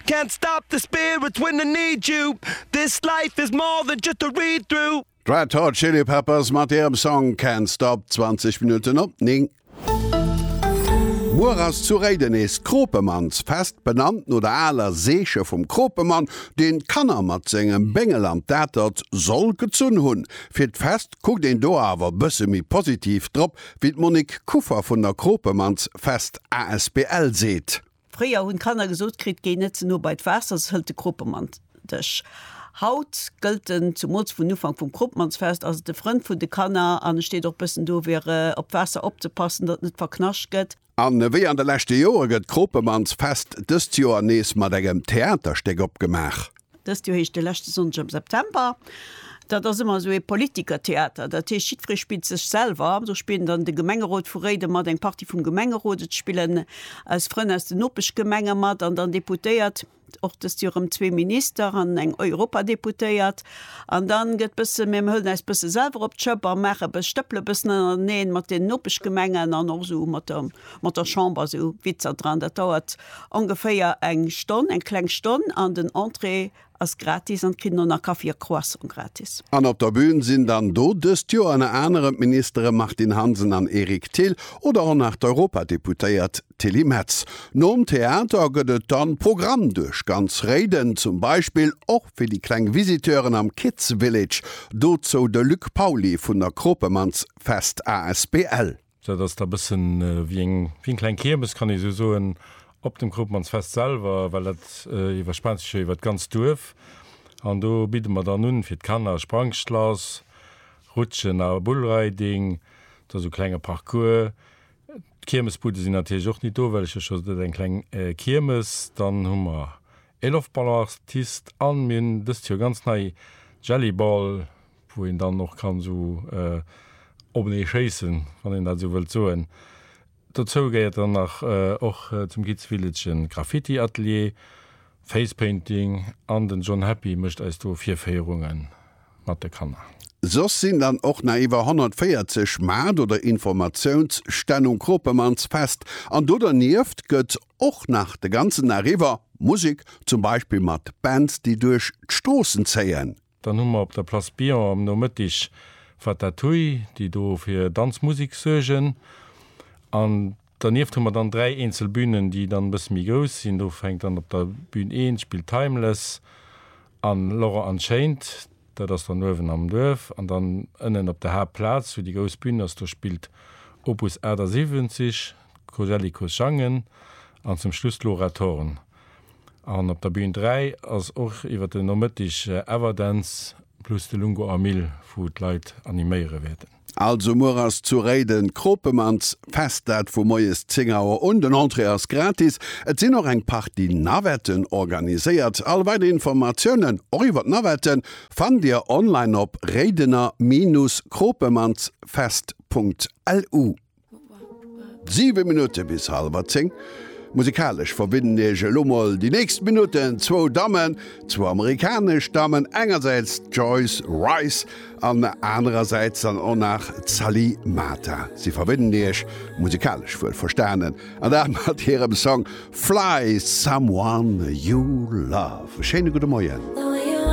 Can't stop the spirit when I need you This life is more than just a read through. D'Red Hot Chili Peppers mat hirem Song Can't Stop, 20 Minutten op 9. Muer ass zu Réiden nees d'Kropemannsfest, benannt no der aler Seeche vum Kropemann, deen d'Kanner mat sengem Béngel an d'Atert soll gezunn hunn. Fir d'Fest kuckt een do awer bësse méi positiv drop, wéi d'Monique Kuffer vun der Kropemannsfest asbl seet. Fréier hunn d'Kanner gesot kritt, Géi net ze no bei d'Waasser, soss hëlt de Kropemann dech. Haut gëllt den, zumools vun Ufank vum Kropemannsfest ass et de Frënd vun de Kanner an e steet och bëssen dofir op d'Waasser opzepassen, datt et net verknascht gëtt. A wéi an de leschte Joere gëtt d'Kropemannsfest dëst Joer nees mat engem Theaterstéck opgemaach. Dëst Joer heescht de leschte Sonndeg am September. Dat ass ëmmer esou ee Politikertheater. Dat heescht, jiddweree spillt sech selwer. Do spillen dann de Gemengerot vu Réiden mat, eng Partie vum Gemengerot, et spillen eis Frënn aus den Nopeschgemenge mat an dann Deputéiert, och dëst Joer erëm zwee Minister an eng Europadeputéiert. An da gëtt bësse, mir hëllen äis bësse selwer op d'Schëpp a maache, stëppele bëssen ënnerteneen mat den Nopeschgemengen an och esou mat der. mat der Chamber esou Witzer dran. Dat dauert ongeféier eng Stonn, eng kleng Stonn an den Entrée ass gratis an kritt elo nach Kaffi a Croissant gratis. An op der Bühn sinn dann do dëst Joer ënner anerem d'Ministere Martine Hansen an Eric Thill oder och nach d'Europadeputéiert Tilly Metz. Nom Theater gëtt et dann Programm duerch ganz Réiden, zum Beispill och fir déi kleng Visiteuren am Kids Village. Dozou de Luc Pauly vun der Kropemanns Fest asbl. Dat ass da bëssen wéi eng wéi eng kleng Kiermes, kann ee sou soen, op dem Kroopmannsfest selwer, well dat iwwerspaant sech jo iwwert d'ganzt Duerf. An do bidde mer dann un fir d'Kanner Sprangschlass, Rutschen a Bullriding, da sou klenge Parcours. D'Kiermesbudde sinn natierlech och nit do, well ech jo scho sot hunn, et ass eng kleng Kiermes. Dann hu mer E Loftballonaartist an mir hunn dëst Joer ganz nei Jellyball, wou een dann och kann esou openee schéissen, wann een dat esou wëllt soen. Dozou gehéiert dann nach och zum Kids Village e Graffiti-Atelier, Facepainting an den John Happy mécht eis do Virféierungen mat de Kanner. Soss sinn dann och nach iwwer 140 Maart oder Informatiounsstänn um Kropemannsfest an do dernieft gëtt Och nach de ganzen Dag iwwer Musek, zum Beispill mat Bands, déi duerch d'Stroossen zéien. Dann hu mer op der Place Billon am Nomëttig Fatatouille, déi do fir Danzmusik suergen. An dernieft hu mer dann dräi eenzel Bünen, déi dann e bësse méi grouss sinn. Do fänkt dann op der Bün 1 spillt Timeless an Laurent Unchained, dat ass dann uewen am Duerf. An dann ënnen op der Haaptplaz, wou déi grouss Bün ass, do spillt Opus 78. Kosellikus sangen an zum Schluss d'Laura Thorn. An op der Bün 3 ass och iwwer den Nomëttig Everdance plus de Lungo Amil wou d'Leit animéiere wäerten. Also muer ass zu Réiden d'Kropemans Fest, dat vu moies 10 Auer un. Den Entrée ass gratis, et sinn och eng Partie Navetten organiséiert. All weider Informatiounen, och iwwer d'Navetten, fannt Dir online op réidener-kropemandsfest.lu. Siwe Minutte bis hallwer zéng. Musikalesch verbinnen iech elo mol déi nächst Minutten zwou Dammen, zwou amerikanesch Dammen, engersäits d'Joyce Wrice an anerersäits dann och nach d'Sally Mata. Si verbinnen iech, musikalesch wuel verstanen, an dat mat hirem Song Fly Someone You Love. E schéine gudde Moien.